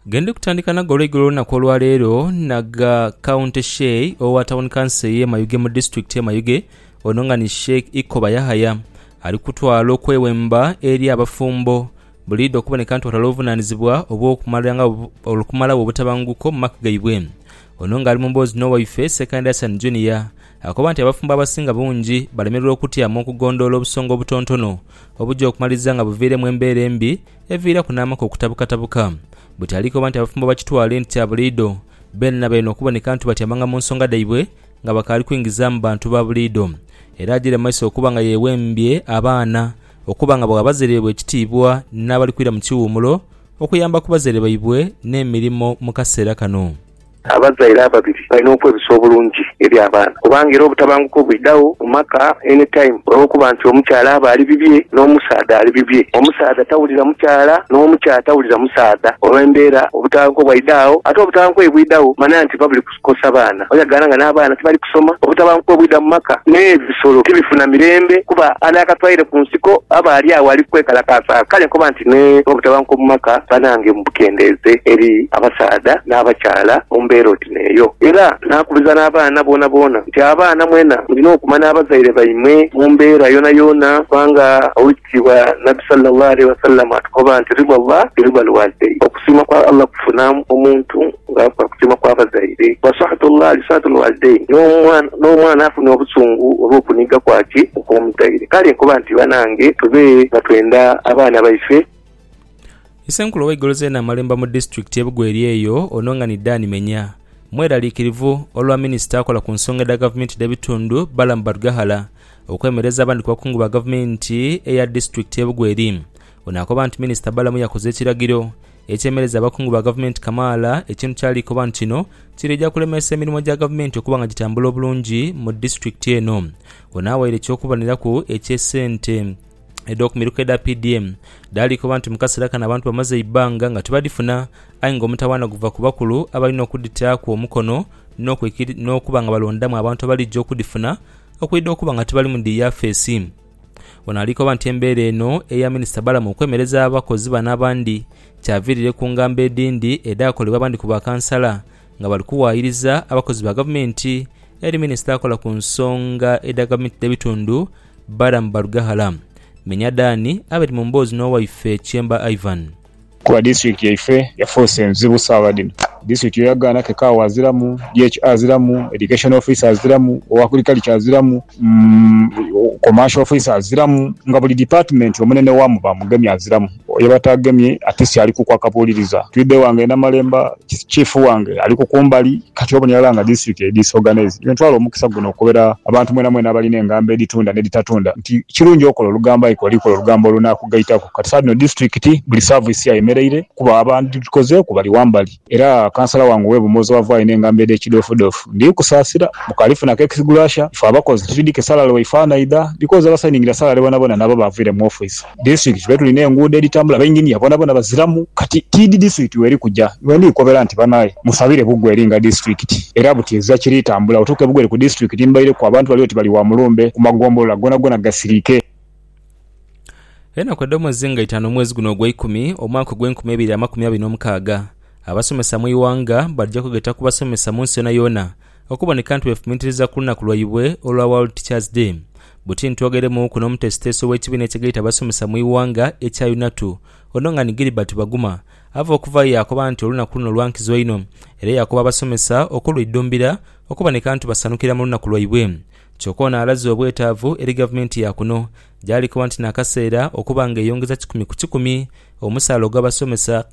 Gendi kutandika nago olw'eigulo olunaku olwa leero naga County Sheikh owa Town Council eye Mayuge mu District ye Mayuge ono nga ni Sheikh Ikoba Yahaya ali kutwala okwewemba eri abafumbo buliidho okuboneka nti batwala obuvunanizibwa obw'okumalagho obutabanguko mu maka gaibwe. Ono nga ali mu mboozi n'owaife Ssekandi Hassan Junior Akoba nti abafumbo abasinga bungi balemererwa okutya mu okugondhoola obusonga obutontono, obuja okumaliriza nga buviiremu embeera embi eviiraku n'amaka okutabukatabuka. Buti ali koba nti abafumbo bakitwale nti kya buliidho, beenena baine okuboneka nti batyamanga mu nsonga dhaibwe nga bakaali kwingizaamu bantu ba buliidho. Era ajiire mu maiso okuba nga yeewembye abaana okuba nga bagha bazaire baibwe ekitiibwa n'abali kwira mu kiwummulo okuyamba ku bazaire baibwe n'emirimo mu kaseera kano. Abazaire ababiri balina okwebisa obulungi eri abaana kubanga era obutabanguko bwidhagho mu maka any time olwokuba nti omukyala aba ali bibye n'omusaadha ali bibye. Omusaadha tawulira mukyala n'omukyala tawulira musaadha olw'embeera obutabanguko bwaidha agho. Ate obutabanguko ye bwidhagho manya nti biba biri kukosa baana oyagaana nga n'abaana tibali kusoma. Obutabanguko bwidha mu maka n'ebyo. Solo tibifuna mirembe, kuba anaakatwaire ku nsiko aba ali agho ali kwekalakaasa. Kale nkoba nti ni bwe butabanguko mu maka, banange mubukendeeze eri abasaadha n'abakyala mu mbeera oti n'eyo. Era naakubiriza n'abaana boonaboona nti, Abaana mwena mulina okumanha abazaire baimwe mu mbeera yoonayoona, kubanga Kigambibwa Nabbi salla Llah alaihi wasallam atukoba nti, Ridha Llah bi ridha lwalidain, okusiima kwa Allah kufuna omuntu nga akola kusiima kwa bazaire, wa sakhatu Llah li sakhati lwalidain, n'omwana afuna obusungu olw'okuniga kwaki okw'omuzaire. Kale nkoba nti banange tube nga twenda abaana baife. Isenkulu ow'eigolo zeena amalemba mu disitulikiti ye Bugweri eyo ono nga ni Dan Menya mweraliikirivu olwa minisita akola ku nsonga edha gavumenti dh'ebitundu Balaam Barugahara Okwemereza abandi ku bakungu ba gavumenti eya disitulikiti y'e Bugweri. Ono akoba nti minisita Balamu yakoze ekiragiro ekyemereza abakungu ba gavumenti kamaala ekintu kyali koba nti kino kiriija kulemesa emirimu gya gavumenti okuba nga gitambula obulungi mu disitulikiti eno. Ono awaire eky'okuboneraku eky'esente edh'okumiruka edha PDM dhaali koba nti mu kaseera kano abantu bamaze eibbanga nga tibadhifuna aye nga omutawaana guva ku bakulu abalina okudhitaaku omukono n'okuba nga balondamu abantu abalija okudhifuna Okwidha okuba nga tibali mu dhi yafeesi. Ono ali koba nti embeera eno eya Minisita Balamu okwemereza abakozi bano abandi kyaviirire ku ngambo edhindi edhaakolebwa abandi ku bakansala nga bali kuwaayiriza abakozi ba Gavumenti eri Minisita akola ku nsonga edha Gavumenti dh'ebitundu Balamu Barugahara. Menya Dan abiri mu mboozi n'owaife Kyemba Ivan. Kuba district yaife yafuuse nzibu sawa dhino. District yo yagaana ke kaawa aziramu, DH aziramu, Education officer aziramu, owa Agriculture aziramu, Commercial officer aziramu nga buli department omunene waamu baamugemye aziramu. Oyo yebatagemye ate si alikuku akabuuliriza. Twidhe ghange Namalemba Chief wange ali ku kumbali kati obona irala nga disitirikiti eri disorganised. Iwe ntwala omukisa guno okukobera abantu mwenamwena abalina engambo edhitunda n'edhitatunda nti kirungi okola olugambo aye k'oli kola olugambo olunaakugaitaku. Kati saaghdhino disitirikiti buli saavisi ayemereire kuba abadhikozeeku bali wambali era kansala wange ow'e Bumozo ava alina engambo edh'ekidhoofudhoofu. Ndi kusaasira mbu kaalifunaku ekisigula sha ife abakozi tuli dhi ke salale waifaa naidha because abasayiningira salale bonabona nabo baavire mu office. District tube tulina enguudo edhitambula bainginiya bonabona baziramu kati tiidhi district weri kuja. Bwendi kobera nti banaye musabire bugwe eri nga district era buti ezira kiri tambula otuuke bugwe eri ku district mbaireku abantu bali oti bali wa mulumbe ku magombolola gonagona gasirike. Enaku edh'omwezi nga itaanu omwezi guno ogwa ikumi omwaka ogw'enkumi eibiri amakumi abiri n'omukaaga, abasomesa mu ighanga baja kwegeta ku basomesa mu nsi yoonayoona Okuboneka nti bwefumiitiriza ku lunaku lwaibwe olwa World Teachers Day, buti ntwogeremuuku n'omuteesiteesi ow'ekibiina ekigaita abasomesa mu ighanga ekya UNATU, Onongani Gilbert Baguma, ava okuvaayo yaakoba nti olunaku luno lwa nkizo inho era yaakoba abasomesa okulwidhumbira okuboneka nti basanukira mu lunaku lwaibwe. Kyoka ono alaze obwetaavu eri gavumenti ya kuno gyali koba nti n'akaseera okuba nga eyongeza kikumi ku kikumi omusaala ogw'abasomesa,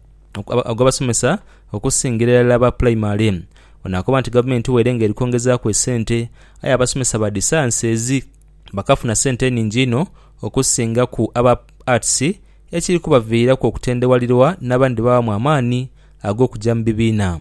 ogw'abasomesa okusingira irala aba pulaimale. Ono akoba nti gavumenti waire nga eri kwongezaaku esente, aye abasomesa ba dhisansi ezi bakafuna sente eningi inho okusingaku aba Arts ekiri kubaviiraku okutendewalirwa n'abandi bawamu amaani ag'okuja mu bibiina.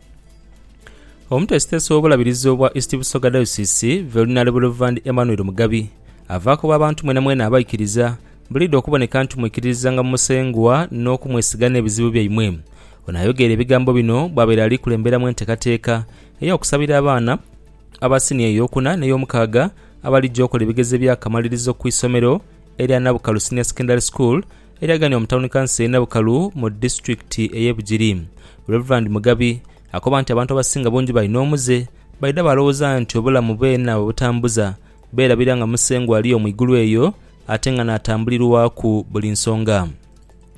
Omutesitesi w'obulabirizi obwa East Busoga Diocese, Velinary Rev. Emmanuel Mugabi, ava koba abantu mwenamwena abaikiriza buliidho okuboneka nti mwikiririzanga mu Musengwa n'okumwesiga n'ebizibu byaimwe. Ono ayogeire ebigambo bino bwabaire ali kulemberamu enteekateeka ey'okusabira abaana aba siniya ey'okuna n'eyomukaaga abalija okola ebigezo ebyakamalirizo ku isomero erya Nabukalu Senior Secondary School Eryaganibwa mu tawuni kanso y'e Nabukalu mu disitulikiti ey'e Bugiri, Rev. Mugabi akoba nti abantu abasinga bungi balina omuze, baidha baalowooza nti obulamu beena bwe butambuza, beerabira nga Musengwa ali yo mu igulu eyo ate nga n'atambulirwaku buli nsonga.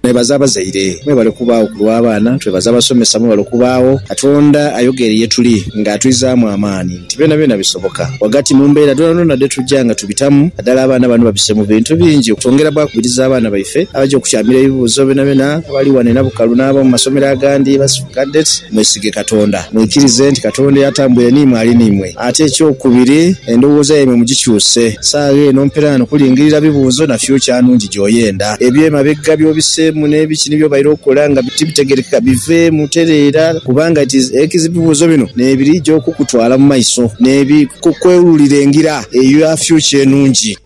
Nebaza abazaire mwebale okubaagho ku lw'abaana, twebaza abasomesa mwebale okubaagho. Katonda ayogeire ye tuli nga atwizaamu amaani. nti byonabyona bisoboka ghagati mu mbeera dhoonadhoona dhe tuja nga tubitamu. Nadala abaana bano babise mu bintu bingi okwongera bwakubiriza abaana baife abaja okukyamira ebibuuzo byonabyona abali ghano e Nabukalu n'ab'omu masomero agandi basifu Cadet mwesige Katonda, mwikirize nti Katonda eyatambwire n'imwe ali n'imwe. Ate ekyokubiri, endowooza yaimwe mugikyuse. Saagha eno mperaano kulingirira bibuuzo na future nungi gy'oyenda. Eby'emabega by'obiseemu n'ebiki ni by'obaire okola nga tibitegeerekeka biveemu tereera. Kubanga ekizibibuuzo bino n'ebirija okukutwala mu maiso n'ebikukwewululira engira eyo ya fyucha enungi.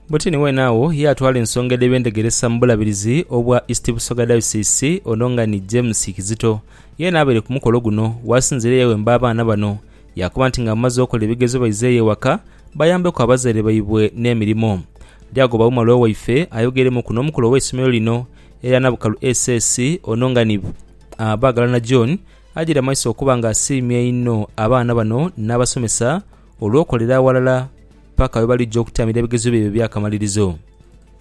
Butini wene agho yaatwala ensonga edh'eby'entegeresa mu Bulabirizi obwa East Busoga Diocese, ono nga ni James Kizito yeena abaire ku mukolo guno. Waasinziire yaawemba abaana bano yaakoba nti nga bamaze okola ebigezo baizeeyo ewaka bayambeku abazaire baibwe n'emirimo. Lyagoba Umar Waife ayogeremuku n'omukulu ow'eisomero lino erya Nabukalu SS, ono nga ni. Baagalana John ajaire amaiso okuba nga asiimye einho abaana bano n'abasomesa olw'okolera aghalala paka bwe balija okutaamira ebigezo byaibwe eby'akamalirizo.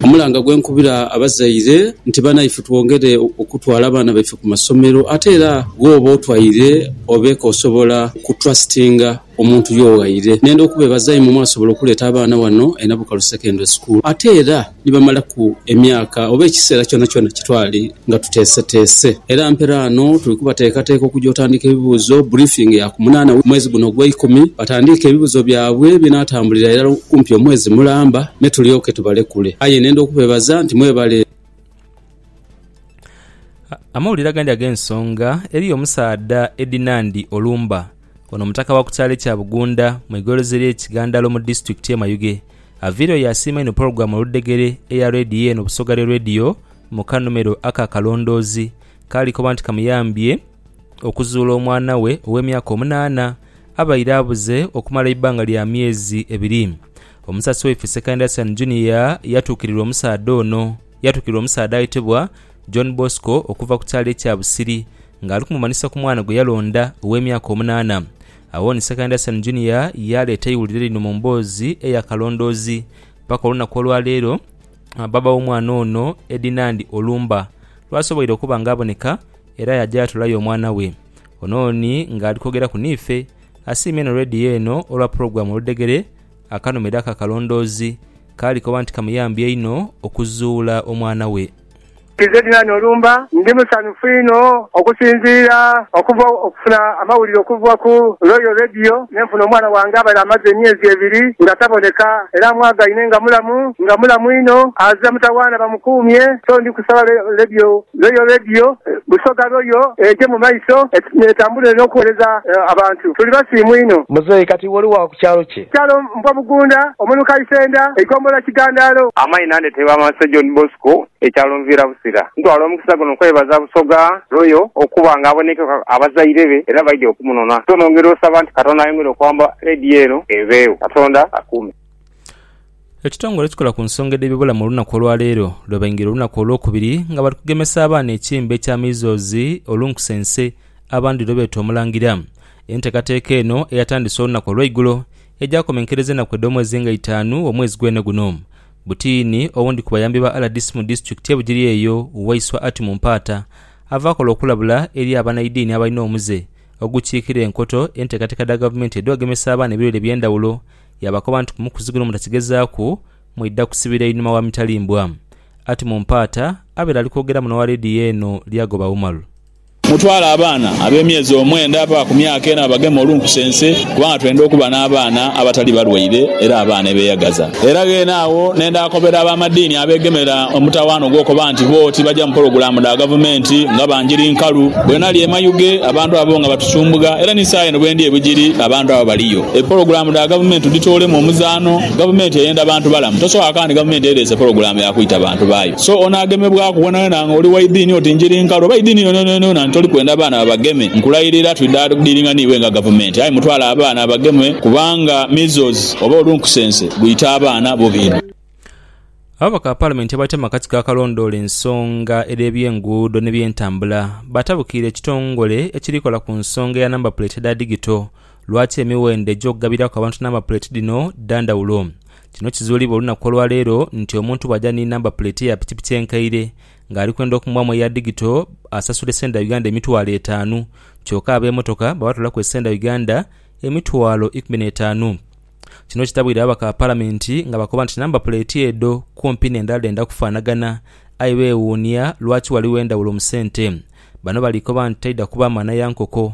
Omulanga gwe nkubira abazaire nti banaife twongere okutwala abaana baife ku masomero ate era ghooba otwaire obeeko osobola ku trustinga. omuntu yo ghaire nenda okubebaza imwe mwasobola okuleta abaana wano e Nabukalu Secondary School ate era ni bamalaku emyaka oba ekiseera kyonakyona kyetwali nga tuteeseteese era mpera ano tuli kubateekateeka okuja otandika ebibuuzo, briefing, ya ku munaana we mwezi guno ogwe ikumi batandiike ebibuzo byabwe ebinatambulira irala kumpi omwezi mulamba me tulyoke tubalekule aye nenda okubebaza nti mwebale. Amawulire agandi ag'ensonga, Eriyo omusaadha Edinandi Olumba Ono mutaka wa ku kyalo ekya Bugunda mu igoroza erye Kigandalo mu disitulikiti ye Mayuge. Aviireyo yaasiima inho pulogulaamu oludhegere eya leediyo eno Busoga Lyo Leediyo mu kanhumero aka Akalondoozi kaali koba nti kamuyambye okuzuula omwana we ow'emyaka omunaana abaire abuze okumala eibbanga lya myezi ebiri. Omusasi waife Sekainde Asian Junior yatuukirirwa omusaadha ono yatuukirirwa omusaadha ayetebwa John Bosco okuva ku kyalo ekya Busiri ng'ali kumumanhisa ku mwana gwe yalonda ow'emyaka omunaana. Agho ni Second Hassan Junior yaaleeta eiwulire lino mu mboozi eya kalondoozi, Paka olunaku olwa leero, bbaabba w'omwana ono, Edinand Olumba, lwasoboire okuba nga aboneka era yaaja yaatolayo omwana we. Ono ni ng'ali kwogeraku niife, asiimye inho Radio eno olwa pulogulaamu oludhegere akanhumira aka kalondoozi, k'ali koba nti kamuyambye inho okuzuula omwana we. Nze Dylan Olumba ndi musanhufu inho okusinziira okuva okufuna amawulire okuva ku Royal Radio ne nfuna omwana wange abale amaze emyezi ebiri nga taboneka era amwagaine nga mulamu nga mulamu inho aze mutawaana bamukuumye so ndi kusaba Radio Royal Radio Busoga Royal eje mu maiso etambule n'okuwereza abantu. Tuli basiimu inho. Muzeeyi kati iwe oli wa ku kyalo ki? Kyalo Mpobugunda, Omuluka Isenda, Eigombolola Kigandaalo. Amaina nde Tebamaso John Bosco Ekyalonviira Busira, ntwala omukisa guno okwebaza Busoga Royal okuba nga abonekyeku abazaire be era baidhye okumunona. So nongera osaba nti Katonda ayongere okuwamba leediyo eno eveegho. Katonda akuume. Ekitongole ekikola ku nsonga edh'ebibulamu olunaku olwaleero lwebaingira olunaku olwokubiri nga bali kugemesa abaana ekimbe kya measles, olunkusense abandi lwebeeta omulangira. Enteekateeka eno eyatandise olunaku olweigulo egyakomenkereza enaku edh'omwezi nga itaanu omwezi gwene guno. Butiini, owundi ku bayambi ba rdc mu disitulikiti ye Bugiri eyo, Waiswa Atimu Mpaata, ava akola okulabula eri abanaidiini abalina omuze ogukiikira enkoto enteekateeka dha gavumenti edhogemesa abaana ebirwaire ebyendawulo yaabakoba nti kumukuzi guno mutakigezaaku mwidha kusibira inhuma wa mitalimbwa. Atimu Mpaata abaire ali kwogera muno wa leediyo eno Lyagoba Umaru. Mutwale abaana ab'emyezi omwenda paka ku myaka ena babageme olunkusense, kubanga twenda okuba n'abaana abatali balwaire era abaana ebeeyagaza. Era ghene agho ne ndaakobera ab'amadiini abeegemera omutawaana ogw'okoba nti bo tibaja mu pologulaamu dha gavumenti nga banjiri nkalu. Bwe nali e Mayuge abantu abo nga batusumbugha era ni saayino bwe ndi e Bugiri abantu abo baliyo. Epologulaamu dha gavumenti tudhitoolemu omuzaano. Gavumenti eyenda bantu balamu, tosobola kwakanga nti gavumenti ereese pologulaamu ya kwita bantu baayo. So onaagemebwaku ghonhaghonha nga oli wa idini oti njiri nkalu oba idini yonayonayona nti toli kwenda baana babageme. Nkulairira twidha dhiringa n'iwe nga gavumenti aye mutwale abaana bagemwe kubanga measles oba olunkusense gwita abaana bubi inho. Ababaka ba Palamenti abatya mu akatiko akalondoola ensonga edh'ebyenguudo n'ebyentambula batabukiire ekitongole ekiri kola ku nsonga ya namba puleeti edha digito Lwaki emiwendo egy'okugabiraku abantu namba puleeti dhino dha ndhawulo? Kino kizuulibwa olunaku olwa leero nti omuntu bw'aja ni namba puleeti eya pikipiki enkaire ng'ali kwenda okumuwaamu eya digito asasule sente dha Uganda emitwalo etaanu kyoka ab'emotoka babatoolaku esente dha Uganda emitwalo ikumi n'etaanu. Kino kitabwire ababaka ba Palamenti nga bakoba nti namba puleeti edho kumpi n'endala dhenda kufaanagana aye beewuunia lwaki ghaligho endhawulo mu sente. Bano bali koba nti taidha kuba maana ya nkoko